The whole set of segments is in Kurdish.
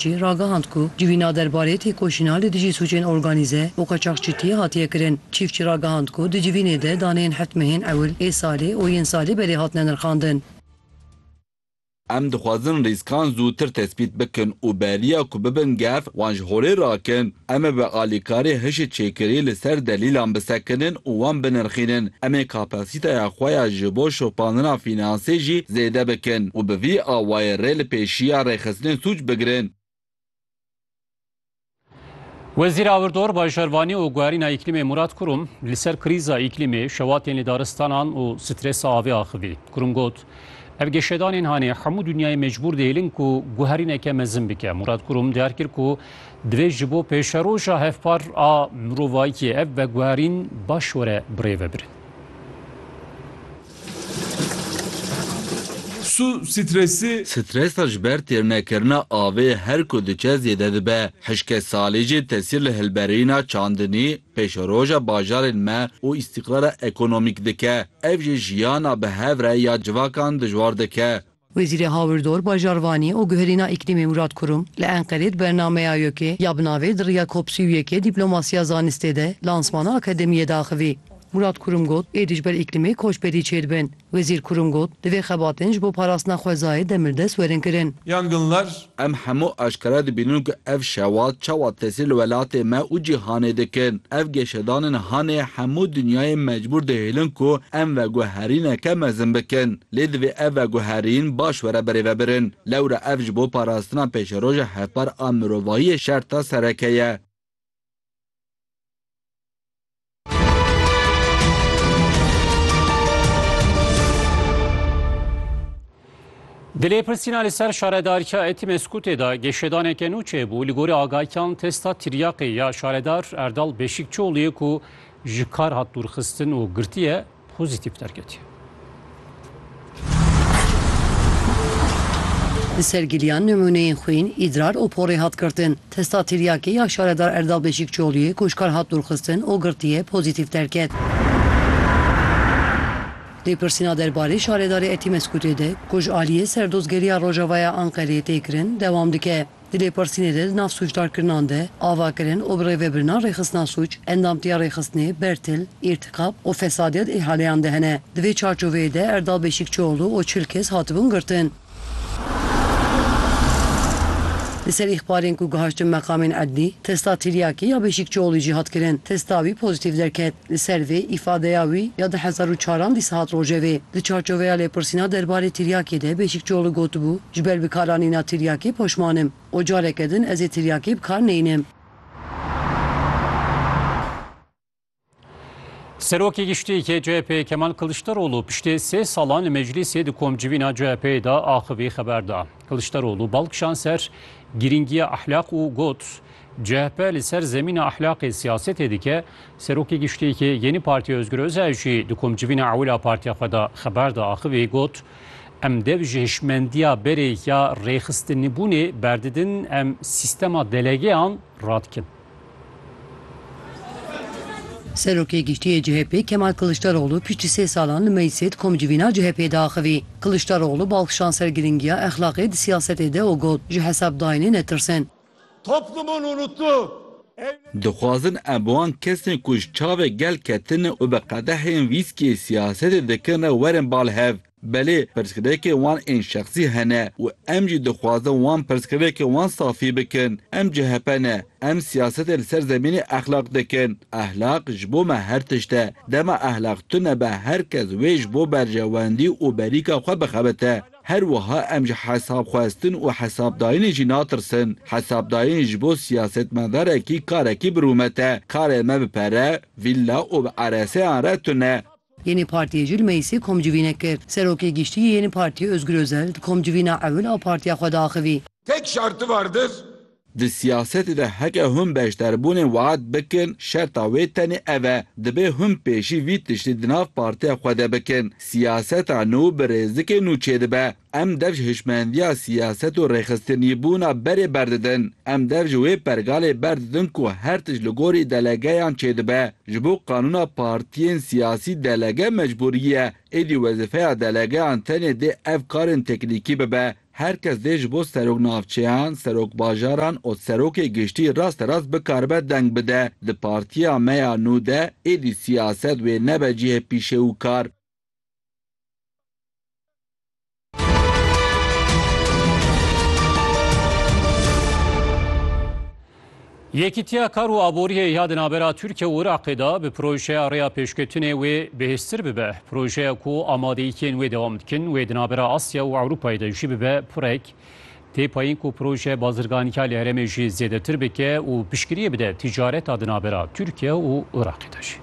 jî ragihand ku civîna derbarê têkoşîna li dijî sûcên organîze û qaçaxçîtiyê hatiye kirin. Çîfçî ragihand ku di civînê de daneyên heft mehên ewil ê salê û yên salê berê hatine nirxandin. Em dixwazin rîskan zûtir tespît bikin û beriya ku bibin gef wan ji holê rakin. Em ê bi alîkarî hişê çêkirî li ser delîlan bisekinin û wan binirxînin. Em ê kapasîteya xwe ya ji bo şopandina fînansê jî zêde bikin û bi vî awayê rê li pêşiya rêxistinên sûc bigirin. Wezîra Wirdor Bay Şervanî û Guherîna Îklîmê Mûrat Kurum li ser krîza îklîmê, şewatên li daristanan û stresa avê axivî. Kurum got, Ev geşedanên hanê hemû dinyayê mecbûr dihêlin ku guherîneke mezin bike. Mûrat Kurum diyar kir ku Divê ji bo pêşeroja hevpar a mirovayîtiyê ev veguherîn baş were birêve birin. Su, stresi. Stresa ji ber têrnekirina avê her ku diçe zêde dibe. Hişkê salî jî tesîr li hilberîna çandinî, pêşeroja bajarên me û îstîqrara ekonomîk dike. Ev jî jiyana bi hev re ya civakan dijwar dike. Wezîrê Hawirdor, Bajarvanî û Guherîna Îklîmê Murad Kurum li Enqerê di bernameya YÖK'ê ya bi navê Di riya cop sî û yek ê dîplomasiya zanistê de lansmana akademiyê daxivî. Murad Kurum got, Êdî ji ber îklîmê koçberî çêdibin. Wezîr Kurum got, Divê xebatên ji bo parastina xwezayê demirdest werin kirin. Yangınlar Em hemû aşkere dibînin ku ev şewa çawa tesîr li welatê me û cîhanê dikin. Ev geşedanên hanê hemû dinyayê mecbûr dihêlin ku em veguherîneke mezin bikin. Lê divê ev veguherîn baş were birêvebirin. Lewra ev ji bo parastina pêşeroja hevpar a mirovahiyê şerta sereke ye. Di lêpirsîna li ser şaredarîya Etimeskûtê de geşedaneke nû çêbû li gorî agahiyan testa tiryaqê ya şaredar Erdal Beşîkçioğlu'yê ku ji kar hat dûrxistin û girtiye Pozîtîf derketiye. Li ser giliyan nimûneyên xwîn, îdrar û porê hat girtin. Testa tiryakê ya Şaredar Erdal Beşîkçoluyê ku ji kar hat dûrxistin û girtiye, pozîtîf derket. Lêpirsîna derbarê Şaredarê Etimeskutê de ku ji aliyê Serdozgeriya Rojavaya Anqereyê tê kirin, dewam dike. Di lêpirsînê de di nav sûcdarkirinan de avakirin û bi rêvebirina rêxistina sûc, endamtiya rêxistinê, bertil, îrtîkab û fesadîya di îhaleyan de hene. Di vê çarçoveyê de Erdal Beşîkçioğlu û çil kes hatibûn girtin. Li ser îxbarên ku gihiştin meqamên edlî, testa tiryakî ya Beşîkçioğlû jî hat kirin. Testa wî pozîtîf derket. Li ser vê îfadeya wî ya di hezar û çaran dîsa hat rojevê. Di çarçoveya lêpirsîna derbarê tiryakê de Beşîkçioğlu gotibû, Ji ber bikaranîna tiryakê poşman im û careke din ez ê tiryakê bi kar neynim. Serokê Giştî yê CHP'ê Kemal Kiliçdaroglu piştê sê salan li meclîsê di komcivîna CHP'ê de axivî xeber da. Kiliçdaroglu bal kişand ser girîngiya ahlak û got, CHP li ser zemîna ehlaqê siyasetê dike, Serokê Giştîkê Yenî Partiya Ozgur Özel jî di komcivîna ewil a partiya xwe de xeber da axivî got, Em dev ji hişmendiya berê ya rêxistinîbûnê berdidin, em sîstema delegeyan radikin. Serokê Giştî yê CHP Kemal Kiliçdaroglu piştî sê salan li Meyîsê di komcivîna CHP'ê de axivî. Kiliçdaroglu bal kişand ser girîngiya exlaqê di siyasetê de û got, Ji hesabdayînê netirsin. Toplumun unuttuğu. Dixwazin em bi wan kesên ku ji çavê gel ketine û bi qedehên wîskiyê siyasetê dikin re werin ba li hev. Belê pirsgirêkên wan ên şexsî hene û em jî dixwazin wan pirsgirêkên wan safî bikin. Em CHP ne. Em siyasetê li ser zemînê exlaq dikin. Exlaq ji bo me her tişt e. Dema exlaq tune be her kes wê ji bo berjewendî û berîka xwe bixebite. Her wiha em ji hesabxwestin û hesabdayînê jî natirsin. Hesabdayîn ji bo siyasetmedarekî karekî bi rûmet e. Karê me bi pere, vîlla û bi ereseyan re tune. Yeni Partiyê jî li Meyisê komcivînek kir. Serokê Giştî yê Yeni Partiyê Ozgur Ozel di komcivîna ewil a partiya xwe diaxivî. Tek şerti vardir Di siyasetê de heke hûn beşdarbûnê waet bikin, şerta wê tenê ev e, dibê hûn pêşî vî tiştî di nav partiya xwe de bikin. Siyaseta nû bi rêzikê nû çêdibe. Em dev ji hişmendiya siyaset û rêxistinîbûna berê berdidin. Em dev ji wê pergalê berdidin ku her tişt li gorî delegeyan çêdibe. Ji bo qanûna partiyên siyasî delege mecbûrî ye. Êdî wezîfeya delegeyan tenê dê ev karên teknîkî bibe. Her kes dê ji bo serok navçeyan, serok bajaran û serokê giştî rasterast bikaribe deng bide. Di partiya me ya nû de êdî siyaset wê nebe cihê pîşe û kar. Yekîtiya Kar û Aboriyê ya di navbera Tirkiye û Iraqê de bi projeya rêya pêşketinê wê bihêztir bibe. Projeya ku amadeyîkên wê dewam dikin wê di navbera Asya û Ewropayê de jî bibe pirek tê payîn ku proje bazirganîka li herêmê jî zêdetir bike û piştgiriyê bide tîcareta di navbera Tirkiye û Iraqê de jî.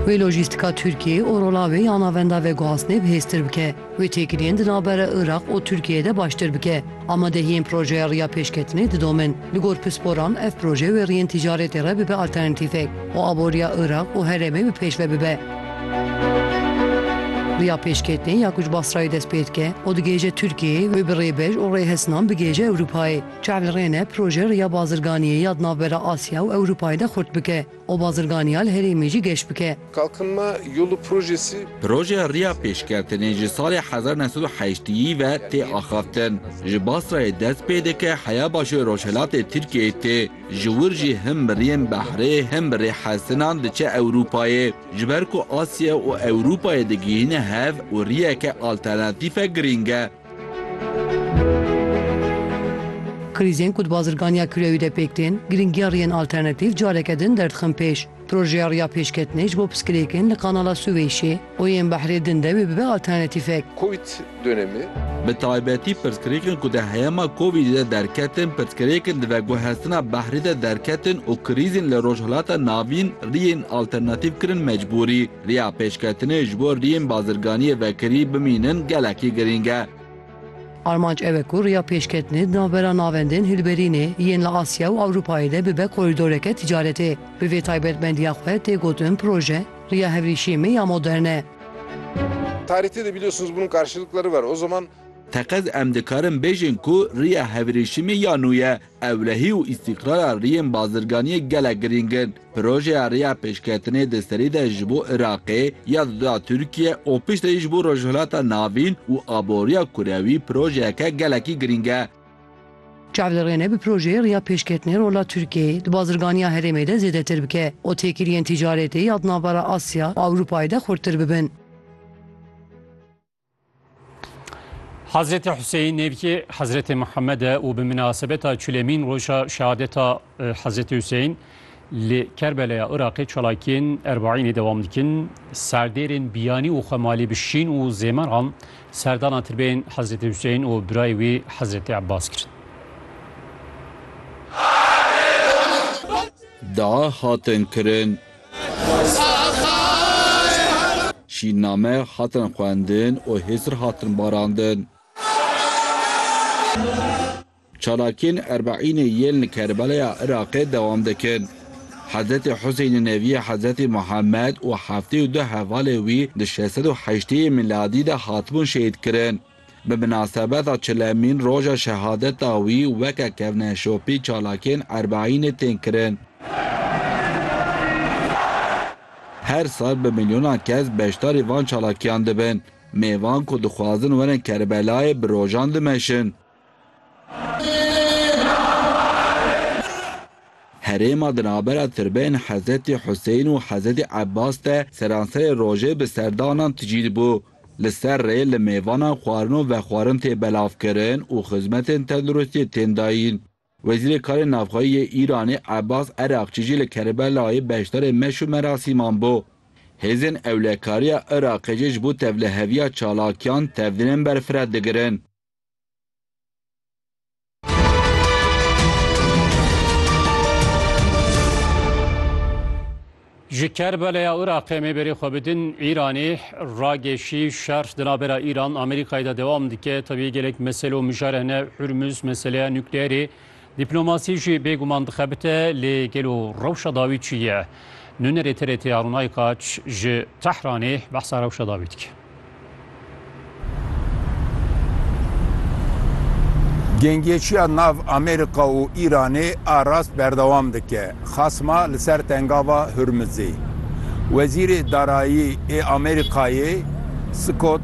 Wê lojîstika Tirkiyeyê û rola wê ya navenda veguhastinê bihêztir bike, wê têkiliyên di navbera Iraq û Tirkiyeyê de baştir bike. Amadehiyên projeya riya pêşketinê didomin. Li gor pisporan ev proje wê riyên tîcaretê re bibe alternatîfek û aboriya Iraq û herêmê bi pêş ve bibe. Riya pêşketinê ya ku ji Basrayê dest pê dike û digihêje Tirkiyeyê wê bi rêbej û rêhesinan bigihêje Ewropayê. Çav li rê ne proje riya bazirganiyê ya di navbera Asya û Ewropayê de xurt bike û bazirganiya li herêmê jî geş bike. Kalkınma Yolu projesi. Projeya riya pêşketinê ji salê hezar neh sed û heştîyî ve tê axaftin. Ji Basrayê dest pê dike heya başûrê rojhilatê Tirkiyeyê tê. Ji wir jî him bi riyên behrê him bi rê hesinan diçe Ewropayê. Ji ber ku Asya û Ewropayê digihîne hev û riyeke alternatîfe girîng e. Krîzên ku di bazirganiya kirewî de pêk tên, girîngiya riyên alternatîf careke din derdixin pêş. Projeya riya pêşketinê ji bo piskilêkin li Kanala Sûvêşê û yên behrê din de wê bibe alternatîfek. Covid dönemi. Bi taybetî pirsgirêkin ku di heyama Covidê de derketin, pirsgirêkin di veguhestina behrê de derketin û krîzên li Rojhilata Navîn riyên alternatîf kirin mecbûrî. Riya pêşketinê ji bo riyên bazirganiyê vekirî bimînin gelekî girîng e. Armanc ew e ku riya pêşketinê di navbera navendên hilberînê yên li Asya û Ewropayê de bibe korîdoreke tîcaretê. Bi vê taybetmendiya xwe tê gotin proje, Riya Hevrîşiyê me ya modern e. Tarihte de biliyorsunuz bunun karşılıkları var. O zaman. Teqez em dikarin bêjin ku riya hevrîşî me ya nû ye. Ewlehî û îstîqrara riyên bazirganiyê gelek girîng in. Projeya riya pêşketinê di serî de ji bo Iraqê, ya di duda Tirkiye û piştre jî ji bo Rojhilata Navîn û aboriya kurewî projeyeke gelekî girîng e. Çav li rê ne bi projeyê riya pêşketinê rola Tirkiyeyê di bazirganiya herêmê de zêdetir bike û têkiliyên tîcaretê ya di navbera Asya û Ewropayê de xurttir bibin. Hazretê Hüseyin nêvkê Hazretê Muhammed e û bi minasebeta çulemîn roja şehadeta Hazretê Hüseyin li Kerbelaya Iraqê çalakiyên Erbaînê dewam dikin. Serdêrên biyanî û xwemalî bi şîn û zêmer an serdana tirbeyên Hazretê Hüseyin û birayê wî Hazretê Ebbas kirin. Dua hatin kirin. Şînname hatin xwendin û hêsir hatin barandin. Çalakiyên Erbeînê yên li Kerbelaya Iraqê dewam dikin. Hezretê Husênê neviyê Hezretê Muhemed û heftê û du hevalê wî di şeş sed û heştê yê mîladî de hatibûn şehîdkirin. Bi minasebeta çilemîn roja şehadeta wî weke kevneşopî çalakiyên Erbeînê tên kirin. Her sal bi milyonan kes beşdarî van çalakiyan dibin. Mêvan ku dixwazin werin Kerbelayê bi rojan dimeşin. Herêma di navbera tirbeyên Hezretî Huseyîn û Hezretî Ebbas de seranserê rojê bi serdanan tijî dibû. Li ser rê li mêvana xwarin û vexwarin tê belavkirin û xizmetên tenduristiyê tên dayîn. Wezîrê Karên Navxweyî yê Îranê Ebas Erakçî jî li Kerbelayê beşdarê meş û merasîman bû. Hêzên ewlekariya Iraqê jî ji bo tevliheviya çalakiyan tevdînên berfireh digirin. Ji Kerbeleya Iraqê mêberê xwe bidin Îranê ragêşî şer di navbera Îran Amerîkayê de dewam dike tevî gelek mesele û mijare hene Hurmuz meseleya nukleerê Dîplomasî jî bêguman dixebite lê gelo rewşa dawî çi ye? Nûnerê TRT Arûn Aykaç ji Tehranê behsa rewşa dawî dike. Gengêçiya nav Amerîka û Îranê a rast berdewam dike xasma li ser Tengava Hurmizê. Wezîrê Darayî ê Amerîkayê Scott